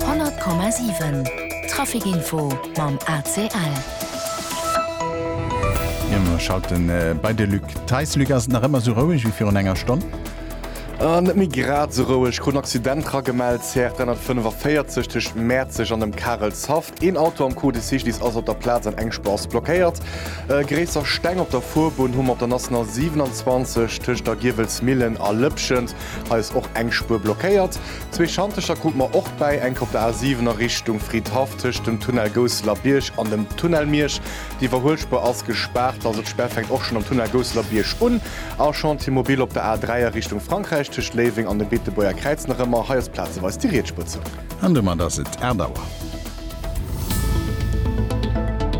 100,7 Traficinfo mam ACL. Jo mer schalten bei de Luc Theis. Luc, ass et nach ëmmer esou roueg wéi virun enger Stonn? Net méi grad esou roueg. Krut en Accident ragemellt, CR 345 tëscht Mäerzeg an dem Karelshaff. Een Auto am Code Cycliste ass op der Plaz an eng Spur ass blockéiert. Gréisser Steng op der Fuerbunn hu mer op der National 27 tëscht der Giewelsmillen a Lëpschent. Hei ass och eng Spuer blockéiert. Zwee Schantecher krut mer och bäi, enk op der A7 a Richtung Fridhaff tëscht dem Tunnel Gousseler Bierg an dem Tunnel Miersch. Déi Iwwerhuelspuer ass gespaart, also d'Spär fänkt och schonn am Tunnel Gousseler Bierg un. A Chantier mobile op der A3 a Richtung Frankräich tëscht Léiweng an dem Beetebuerger Kräiz nach ëmmer. Hei ass plazeweis déi Rietsspuer zou. An domat ass et 8 Auer.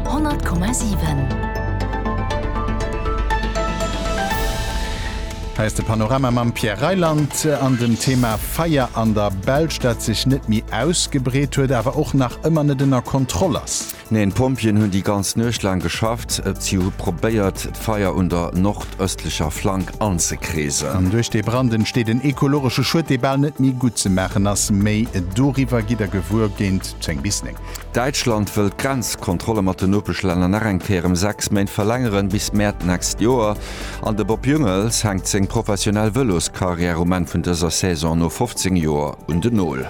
100,7. Hei ass de Panorama mam Pierre Reyland an dem Thema Feier an der Belsch, dat sech net méi ausgebreet huet, awer och nach ëmmer net ënner Kontroll ass. Neen, d'Pompjeeën hunn déi ganz Nuecht laang geschafft. Si hu probéiert, d'Feier un der nordëstlecher Flank anzekreesen. Duerch dee Brand entsteet en ekologesche Schued, dee bal net méi guttzemaachen ass. Méi doriwwer gitt der gewuer géint 10 bis 9. Däitschland wëll d'Grenzkontrolle mat den Nopeschlänner nach eng Kéier ëm sechs Méint verlängeren, bis Mäert d'nächst Joer. An de Bob Jungels hänkt seng professionell Vëloskarriär um Enn vun dëser Saison no 15 Joer un den Nol.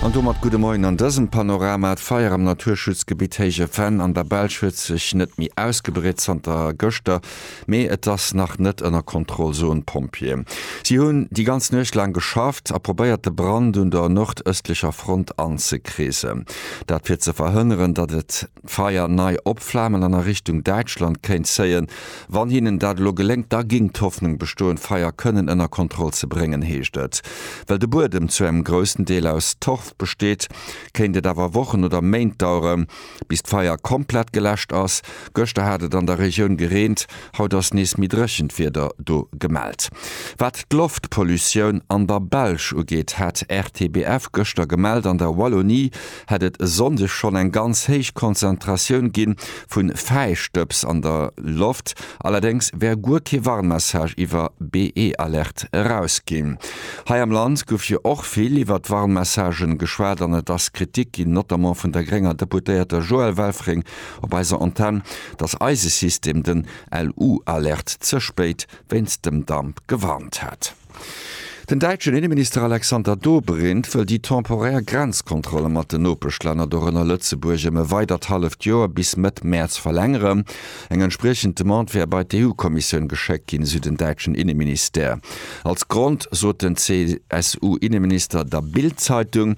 An domat gudde Moien an dësem Panorama. D'Feier am Naturschutzgebitt Héije Venn an der Belsch huet sech net méi ausgebreet zanter gëschter, mee et ass nach net ënner Kontroll, soen d'Pompjeeë. Si hunn déi ganz Nuecht laang geschafft a probéiert de Brand un der nordëstlecher Front anzekreesen. Dat fir ze verhënneren, datt et. d'Feier nei opflamen an a Richtung Däitschland kéint zéien. Wann hinnen dat elo geléngt, da géing d'Hoffnung bestoen, d'Feier kënnen ënner Kontroll ze bréngen, heescht et. Well de Buedem zu engem groussen Deel aus Torf besteet, kéint et awer Wochen oder Méint dauere bis d'Feier komplett geläscht ass. Gëschter hat et an der Regioun gereent, haut ass nees méi dréchent Wieder do gemellt. Wat d'Loftpollutioun an der Belsch ugeet, hat RTBF gëschter gemellt, an der Wallonie hätt et e Sonndeg schonn eng ganz héich Konzentratioun gi vu Fäistëbs an der Loft, allerdéngs wär guer kee Warnmessage iwwer BE-Alerte erausginn. Hei am Land gouf jo och vill iwwer d'Warnmessagen geschwat an et ass Kritik ginn, notamment vun der grénger Deputéierter Joëlle Welfring op eiser Antenn, dass eise System den LU-Alerte ze spéit wéinst dem Damp gewarnt hätt. Den däitschen Inneminister Alexander Dobrindt wëll déi temporär Grenzkontrolle mat den Nopeschlänner, dorënner Lëtzebuerg, ëm e weidert halleft Joer, bis Mëtt Mäerz verlängere. Eng entspriechend Demande wär bei d'EU-Kommissioun geschéckt ginn, esou den däitschen Inneministère. Als Grond sot den CSU-Inneminister der Bild-Zeitung,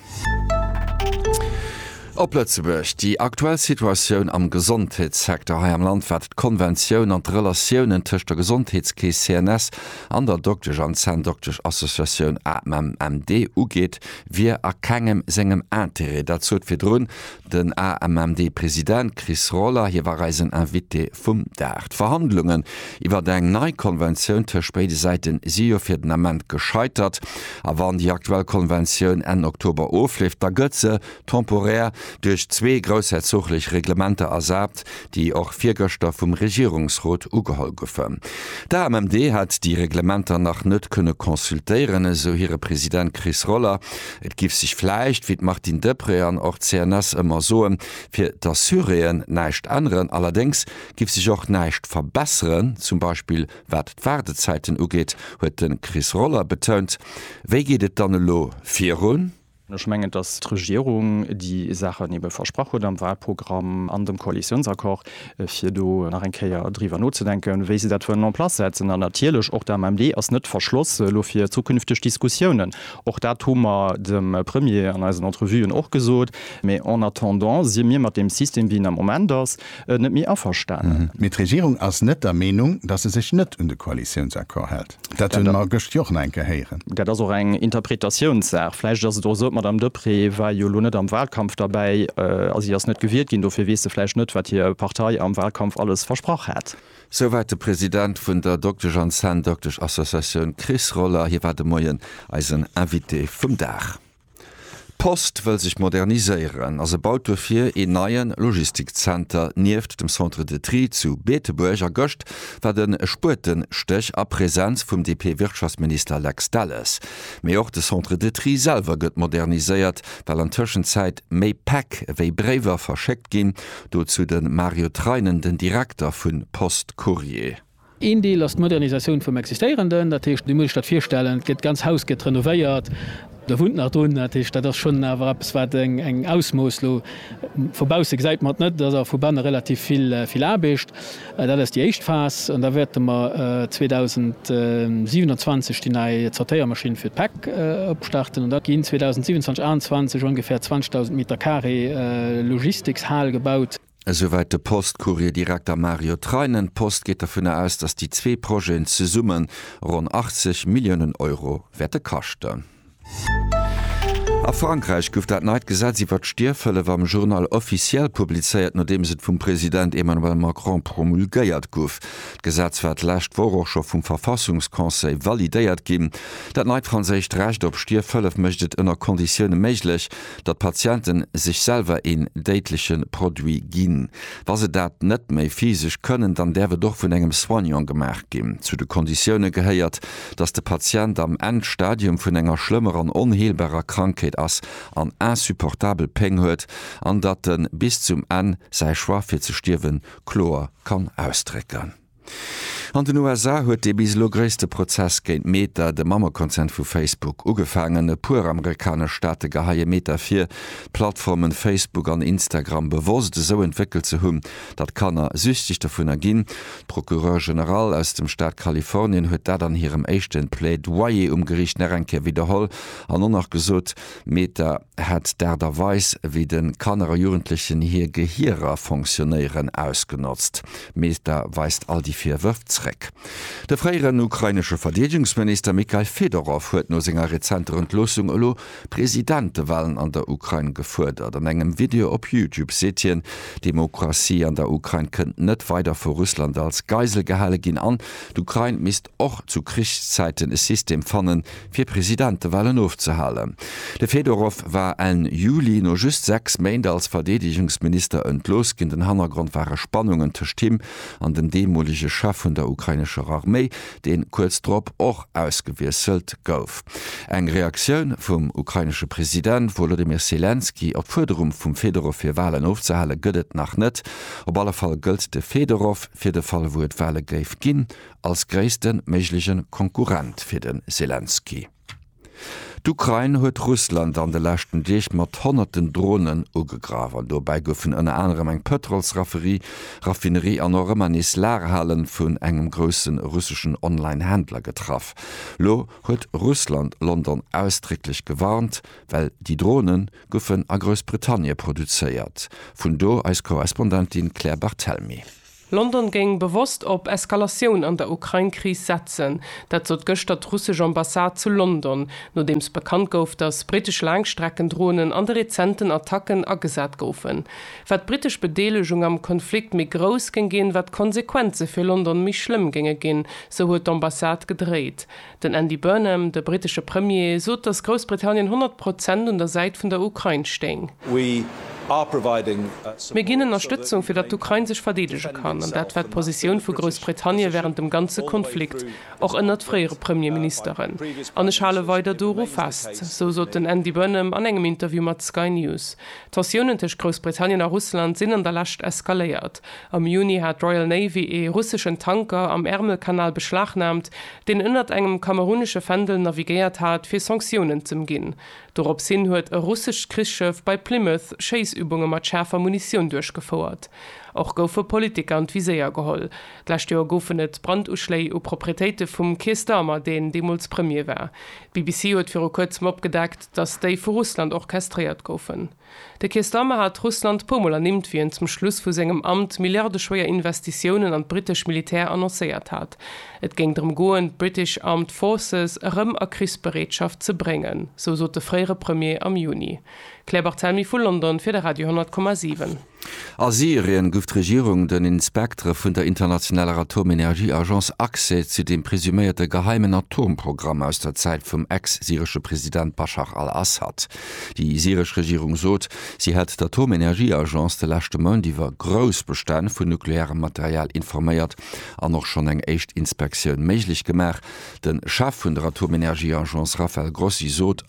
Op Lëtzebuerg, Déi aktuell Situatioun am Gesondheetssecteur hei am Land, wat d'Konventioun an d'Relatiounen tëscht der Gesondheetskeess CNS an der Doktesch an Zänndoktesch-Associatioun AMMD ugeet, wier a kengem sengem Intérêt. Dat sot virdrun Den AMMD-President Chris Roller, hie war eisen Invité vum Dag. D'Verhandlungen iwwert eng nei Konventioun tëscht béide Säiten si jo fir den Ament gescheitert. A wann déi aktuell Konventioun Enn Oktober ofleeft, da gëtt se, temporär, duerch zwee groussherzoglech Reglementer ersat, déi och virgëschter vum Regierungsrot ugeholl goufen. D'AMMD hätt déi Reglementer nach net kënne consultéieren, esou hire President Chris Roller. Et giff sech vläicht, wéi d'Martine Deprez an och d'CNS ëmmer soen, fir d'Assuréen näischt änneren. Allerdéngs giff sech och näischt verbesseren, zum Beispill wat d'Waardezäiten ugeet, huet de Chris Roller betount. Wéi geet et dann elo virun? Ech mengen, dass d'Regierung déi Saachen ebe versprach huet am Wahlprogramm an dem Koalitionsaccord, fir do nach eng Kéier driwwer nozedenken, wéi se dat wëllen en place setzen. An natierlech och d'AMMD ass net verschloss elo fir zukünfteg Diskussiounen. Och dat hu mer dem Premier an eisen Entrevuen och gesot. Mä en attendant si mir mat deem System, wéi en am Moment ass, net méi averstanen. Mee d'Regierung ass net der Meenung, dass se sech net un de Koalitionsaccord hält. Dat hunn mer gëscht jo och nach eng Kéier héieren. Dat ass och eng Interpretatiounssaach. Vläicht ass et och esou, d'Madame Deprez war jo elo net am Wahlkampf derbäi a si ass net gewielt ginn, dofir weess se vläicht net, wat hir Partei am Wahlkampf alles versprach hat. Souwäit de President vun der Doktesch an Zänndoktesch-Associatioun Chris Roller. Hie war de Moien eisen Invité vum Dag. D'Post wëll sech moderniséieren a se baut duerfir een neie Logistikzenter nieft dem Centre de Tri zu Beetebuerg. A gëscht war de Spuetenstéch a Presenz vum DP-Wirtschaftsminister Lex Delles. Mee och de Centre de Tri selwer gëtt moderniséiert, well an Tëschenzäit méi Päck wéi Bréiwer verschéckt ginn. Dozou de Mario Treinen, den Direkter vun Post Courrier. Een Deel ass d'Modernisatioun vum Existéierenden, dat heescht, dir musst iech dat virstellen, d'ganz Haus gëtt renovéiert, do wunnt nach drun, dat heescht, dat ass schonn awer eppes, wat eng Ausmooss, elo vu bausse gesäit mer et net, et ass awer vu banne relativ vill Aarbecht. Dat ass déi éischt Phas an da wäerte mer 2027 déi nei Zortéiermaschinn fir d'Päck opstarten an da ginn 2027, 2028 ongefähr 20.000 Meter carré Logistikshal gebaut. Esouwäit de Post-Courrier-Direkter Mario Treinen. D'Post geet dovunner aus, datt déi zwee Projeten zesumme ronn 80 Milliounen Euro wäerte kaschten. A Frankräich gouf dat neit Gesetz iwwert d'Stierfhëllef am Journal officiel publizéiert, nodeems et vum President Emmanuel Macron promulgéiert gouf. D'Gesetz war d'lescht Woch och scho vum Verfassungsconseil validéiert ginn. Dat neit franséischt Recht op Stierfhëllef mécht et ënner Konditioune méiglech, datt d'Patienten sech selwer een déidleche Produit ginn. Wa se dat net méi physesch kënnen, dann däerf et och vun engem Soignant gemaach ginn. Zu de Konditioune gehéiert, datt de Patient am Endstadium vun enger schlëmmer an onheelbarer Krankheet ass an insupportabel Péng huet, an datt en bis zum Enn säi Choix fir ze stierwen kloer kann ausdrécken. An den USA huet dee bis elo gréisste Prozess géint Meta, de Mammekonzern vu Facebook, ugefaangen. E puer amerikanesch Staate geheie Meta vir, d'Plattformen Facebook an Instagram bewosst esou entwéckelt ze hunn, datt Kanner süchteg dovunner ginn. D'Procureure Generale aus dem Staat Kalifornien huet dat an hirem éischte Plaidoyer um Geriicht nach eng Kéier widderholl an och nach gesot, Meta, hätt d'Aart a Weis, wéi de Kanner a Jugendlechen hir Gehierer fonctionnéieren, ausgenotzt. D'Meeta weist all déi Virwërf zréck. De fréieren ukrainesche Verdeedegungsminister Mykhail Fedorow huet no senger rezenter Entloossung elo Presidentewalen an der Ukrain gefuerdert. An engem Video op YouTube seet hien, d'Demokratie an der Ukrain kënnt net weider vu Russland als Geisel gehale ginn an d'Ukrain misst och zu Krichszäiten e System fannen, fir Presidentewahlen ofzehalen. De Fedorow war Enn Juli, no just sechs Méint als Verdeedegungsminister, entlooss ginn. Den Hannergrond ware Spannungen tëscht him an dem deemolege Chef vun der ukrainescher Arméi, deen kuerz drop och ausgewiesselt gouf. Eng Reaktioun vum ukrainesche President Wolodymyr Selenskyj op d'Fuerderung vum Fedorow fir Wahlen ofzehale gëtt et nach net. Op alle Fall gëllt de Fedorow, fir de Fall wou et Wahle géif ginn, als gréisste méigleche Konkurrent fir de Selenskyj. D'Ukrain huet Russland an de leschten Deeg mat honnerten Dronen ugegraff an dobäi goufen ënner anerem eng Pëtrolsraffinerie an och ëmmer nees Lagerhale vun engem grousse russeschen Online-Händler getraff. Lo huet Russland London ausdrécklech gewarnt, well déi Drone goufen a Groussbritannie produzéiert. Vun do eis Korrespondentin Claire Barthelmy. London géing bewosst op Eskalatioun an der Ukrain-Kris setzen. Dat sot gëschter d'russesch Ambassade zu London, nodeems bekannt gouf, datt brittesch Laangstreckendronen an de rezenten Attacken agesat goufen. Wat d'brittesch Bedeelegung am Konflikt méi grouss géing ginn, wat d'Konsequenze fir London méi schlëmm géinge ginn, sou huet d'Ambassade gedréit. Den Andy Burnham, de brittesche Premier, sot, datt Groussbritannien 100 Prozent un der Säit vun der Ukrain stéing. Mir ginn Ënnerstëtzung, fir datt d'Ukrain sech verdeedege kann. An dat war d'Positioun vu Groussbritannie wärend dem ganze Konflikt, och ënnert fréiere Premierministeren. An ech hale weider doru fest. Sou sot den Andy Burnham an engem Interview mat Sky News. D'Tensiounen tëscht Groussbritannien a Russland sinn an der Lescht eskaléiert. Am Juni hat d'Royal Navy ee russeschen Tanker am Ärmelkanal beschlagnaamt, deen ënnert engem kamerunesche Fändel navigéiert hat, fir Sanktiounen z'ëmginn. Dorops hin huet e russescht Krichsschëff bei Plymouth Schéissübunge mat schaarfer Munitioun duerchgefouert. Och goufe Politiker an d'Viséier geholl. D'lescht Joer goufen et Branduschléi u Proprietéite vum Keir Starmer, deen deemools Premier war. D'BBC huet viru kuerzem opgedeckt, datt déi vu Russland orchestréiert goufen. De Keir Starmer hat Russland puer Mol ernimmt, wéi en zum Schluss vu sengem Amt milliardeschwéier Investitiounen an d'brittesch Militär annoncéiert hat. Et géing drëm goen, d'British Armed Forces erëm a Krichsbereetschaft ze bréngen, sou sot de fréiere Premier am Juni. Claire Barthelmy vu London fir de Radio 10,7. A Syrien guff d'Regierung den Inspektere vun der internationaler Atomenergieagence Accès zu dem presuméierte geheimen Atomprogramm aus der Zäit vum ex-syresche President Baschar al-Assad. Déi syresch Regierung sot, si hätt d'Atomenergieagence de leschte Mount iwwer grouss Bestänn vun nuklearem Material informéiert an och schonn eng éischt Inspektioun méiglech gemaach. De Chef vun der Atomenergieagence Rafael Grossi sot,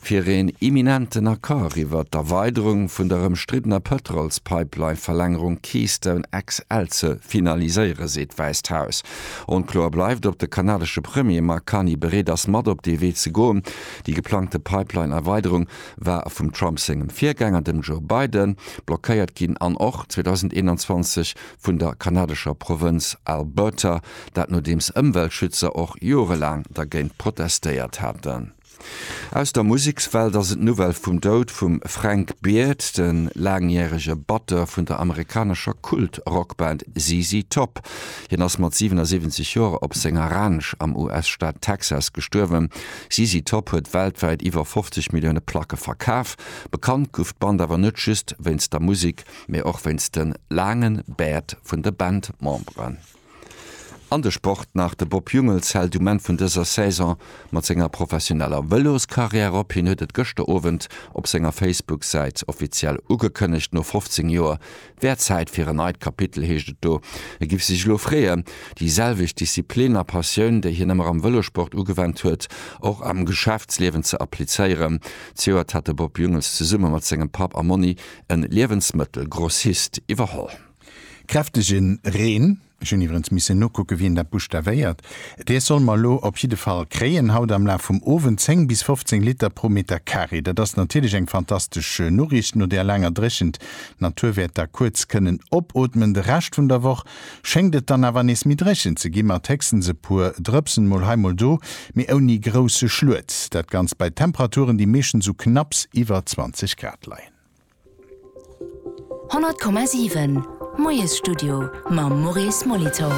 fir een imminenten Accord iwwert d'Erweiderung vun der ëmstriddener Pëtrolspipeline-Verlängerung Keystone XL ze finaliséiere seet d'Wäisst Haus. Onkloer bleift, ob de kanadesche Premier Mark Carney bereet ass mat op dee Wee ze goen. Déi geplangte Pipeline-Erweiderung war vum Trump sengem Virgänger, dem Joe Biden, blockéiert ginn an och 2021 vun der kanadescher Provënz Alberta, dat nodeems Ëmweltschützer och jorelaang dergéint protestéiert haten. Aus der Musekswelt ass et d'Nouvelle vum Doud vum Frank Beard, de laangjärege Batteur vun der amerikanescher Kult-Rockband ZZ Top. Hien ass mat 77 Joer op senger Ranch am US-Staat Texas gestuerwen. ZZ Top huet weltwäit iwwer 50 Millioune Placke verkaf. Bekannt gouf d'Band awer net just wéinst der Musek, mee och wéinst de laange Bäert vun de Bandmemberen. An de Sport nach, De Bob Jungels hält um Enn vun dëser Saison mat senger professioneller Vëloskarriär op. Hien huet et gëschter Owend op senger Facebook-Säit offiziell ugekënnegt. No 15 Joer wär et Zäit fir en neit Kapitel, heescht et do. E giff sech elo freeën, déi selwecht Disziplin a Passioun, déi hien ëmmer am Vëlossport ugewennt huet, och am Geschäftsliewen ze applizéieren. Zejoert hat de Bob Jungels zesumme mat sengem Papp a Monni e Liewensmëttelgrossist iwwerholl. Kräftegen Reen, ech hunn iwwerens missen nokucken wien dat buschtavéiert, dee soll mer elo op jidde Fall kréien haut am Laf vum Owend, 10 bis 15 Liter pro Meter Carré. Dat ass natierlech eng fantastesch Noriicht no där laanger Dréchent. D'Natur wäert da kuerz kënnen opootmen. De Rescht vun der Woch schéngt et dann awer nees méi dréchen ze gi mat héchstens e puer Drëpsen mol hei mol do, mee ouni grousse Schluet. Dat Ganzt bei Temperaturen déi meeschtens u knapps iwwer 20 Grad leien. 100,7 Moiesstudio mam Maurice Molitor.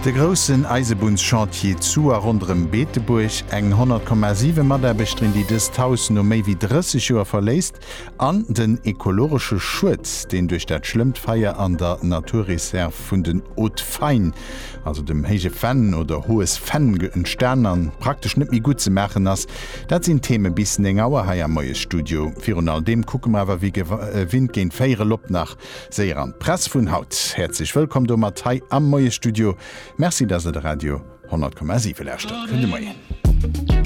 De groussen Eisebunnschantier zu a ronderëm Beetebuerg, eng 100,7 Mataarbechterin, déi dëst Haus no méi wéi 30 Joer verléisst, an den ekologesche Schued, deen duerch dat schlëmmt Feier an der Naturreserv Dialekt vun den Haut-Fayn, also dem héije Fenn oder hohes Fenn, entstan a praktesch net méi gutt ze maachen ass. Dat sinn d'Theme bis 9 Auer hei am Moiesstudio. Virun all deem kucke mer awer wéi gewinnt géint 4 Uer lop nach séier an d'Press vun haut. Häerzlech wëllkomm domat hei am Moiesstudio. Merci, dass der de Radio 100,7 lauschtert. Gudde Moien.